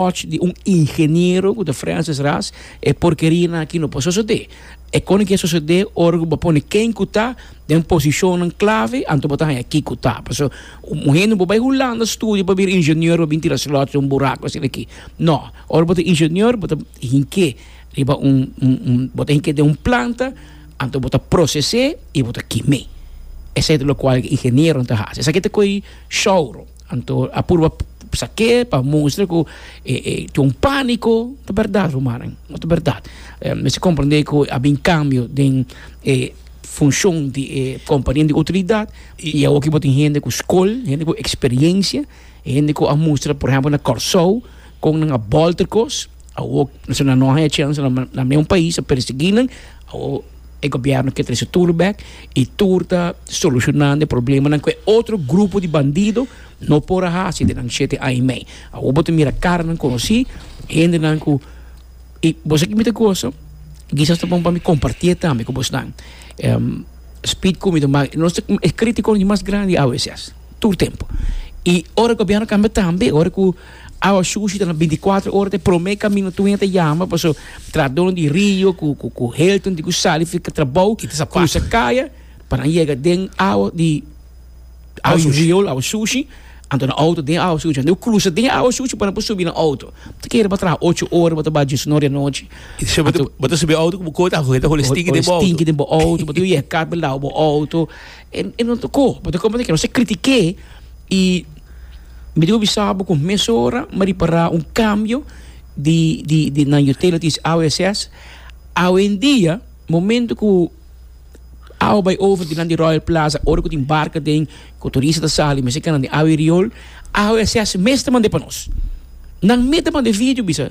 och di un ingeniero cu ta Francis Ras, e porkerianan aki no por sosode. E koni ke sosode ora cu bo pone ken cu ta den posicionnan clave, anto bo ta haña kico ta. Paso, un hende no por bay Hulanda studia pa bira ingenieur, pa bin tira slots den un buraco asina aki. No. Ora bo ta ingenieur, bo ta hinke riba un, un, un, bo ta hinke den un planta, anto bo ta procese y bo ta kime. Esei ta locual e ingenieronan ta haci. Esaki ta coge showroom. Anto a purba sak'é pa mustra ku e e tin un pániko. Ta bèrdat, rumannan, no ta bèrdat. Mester komprendé ku a bin kambio den e funshon di e kompania di outoridat i awor aki bo tin hende ku skol, hende ku eksperiensia, hende ku a mustra, por ehèmpel na Kòrsou kon nan a bòlter kos. Awor esaki nan no a haña chèns nan na mi un pais a persiguí nan, awor e gobièrnu ke trese tur bèk i tur ta solushonando e problemanan ku e otro grupo di bandido no por a hasi den nan shete aña i mei. Awor bo ta mira karanan konosí, hendenan ku i bo sa ke mi ta gosa, kisas ta bon pa mi kompartí e tambe ku bosnan. Speed ku mi ta bai, nos ta e kritikonan di mas grandi awe, tur tempu. I ora gobièrnu kambia tambe, ora ku Awa shushi ta na binticuatro ora ta e prome camino tuyen ta yama paso tradono di rio cu cu cu helton di cu sali fi ca trabou crusa caya pa nan yega den awa di awa shushi di riol awa shushi anto nan auto den awa shushi anto crusa den awa shushi pa nan por subi nan auto ta kere bo a traha ocho ora bo ta bai dies y nor di anochi anto bo ta subi auto cu bo kota hoger ta holi stinki den bo auto bo ta yega kat bo lawa bo auto. E no tocó, bo ta comprendé que nos ta critiqué y mi dibi bisa bo cu mesora mi a repará un cambio di di di nan utilities awe eses awendia momento cu awe bay over dinan di Royal Plaza ora cu tin barca den cu turista ta sali mester canan den awe riol awe eses mes ta mand'e pa nos nan mes ta mand'e video bisa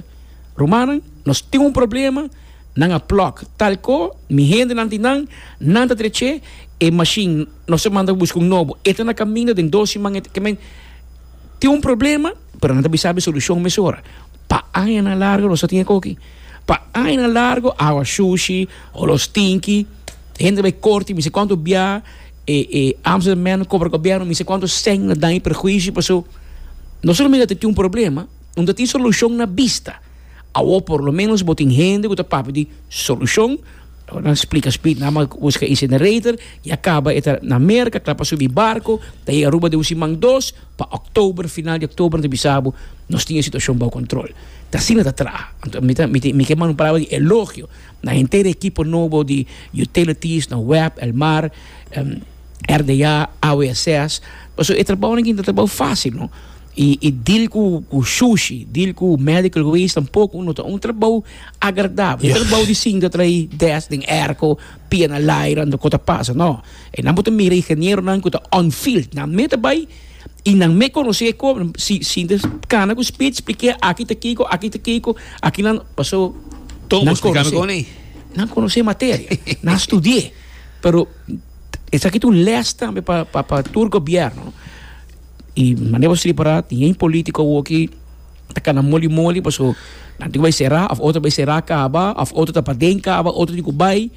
rumannan nos tin un problema. Nan a plug tal ko mi hendenan di nan, nan ta drech'é e mashin, nos ta manda pa buska un nobo. E ta na kaminda, den dos siman e ta ke men. Tin un problema, pero nan ta bisa e solushon mesora. Pa añanan largu nos a tin e koki. Pa añanan largu awa shushi, olo stinki, hende bai korti mi se kuantu bia, e e Amsterdam men kobra gobièrnu mi se kuantu sèn na daño i perhuisio. Paso, nos ta kaminda ta tin un problema, un ta tin solushon na bista. Awor por lo menos bo tin hende cu ta papia di solucion. Awor nan splica Speed nan man busca incinerator y a caba e ta na Merca cla pa subi barco ta yega Aruba den un siman dos pa October final di October nan ta bisa bo nos tin e situacion bao control. Ta asina ta traha. Anto mi ta mi ke manda un palabra di elogio na henter e ekipo nobo di Utilities, na web, El Mar, RDA, AWSS pasobra e trabao nan tin ta trabao facil no. Y y deal cu cu sushi, deal cu medical waste tampoco no ta un trabao agradable. Yeah. Trabao di sinta trae des den airco, pia na laira, no cota pasa, no. E nan bo ta mira ingeniero nan cu ta on field, nan me ta bay y nan me conoce e cor, si sinta cana cu speed splikia aki ta kico, aki ta kico, aki nan, paso Toon bo nan splica mi conoce. con ei. Nan conoce materia, nan studie, pero esaki ta un les tambe pa pa pa tur gobierno. Y manera bo slipa ra tin ein politico awo ki ta cana moli moli paso nan tin cu bay cera of otro bay cera caba of otro ta paden caba otro tin cu bay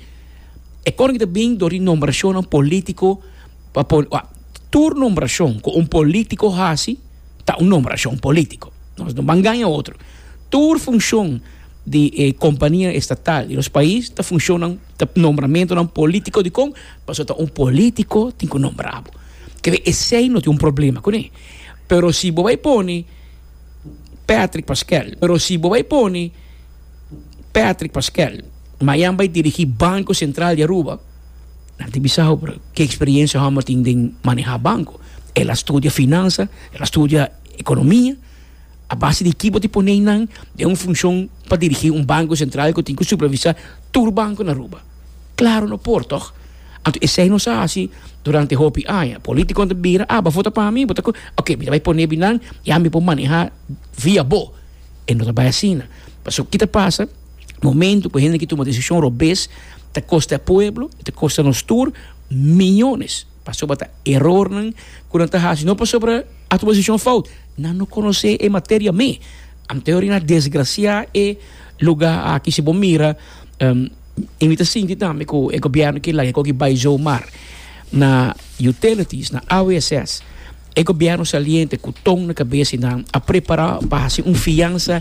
e cono ki ta bin door di nombracionnan politico pa por tur nombracion cu un politico haci ta un nombracion politico nos no ban gana otro tur funcion di e compania estatal di nos pais ta funciona. Ta nombramentonan polítiko dikon? Pasobra ta un polítiko tin ku nombra bo. Ke we esei no tin un problema kuné. Pero si bo bai pone Patrick Pascual, pero si bo bai pone Patrick Pascual mañan bai dirigí Banko Sentral di Aruba, nan a tin bisa ho pero ke eksperiensia hòmber tin den manehá banko. El a studia finansa, el a studia ekonomia. A base di ki bo tin pone nan den un funcion pa dirigi un banco central cu tin cu supervisa tur banco na Aruba? Claro no por, toch? Anto esey nos a haci durante hopi aña. Politiconan ta bira, ah, bo a vota pa mi, bo ta cu, ok, mi ta bay pone binan y ami por maneha via bo. E no ta bay asina. Pasobra ki ta pasa? Momento cu hende na ki tuma decision robes ta costa e pueblo, ta costa nos tur millones. Pasobra ta erornan ku nan ta hasi, no pasobra a tuma desishon fout. Nan no konosé e materia mé. Anto ri na desgrasiá e lugá aki. Si bo mira, i mi ta sinti tambe ku e gobièrnu ke laga e koki bai jou. Mar na utilities, na AWSS, e gobièrnu saliente ku tong na kabes i nan a prepará pa hasi un fiansa.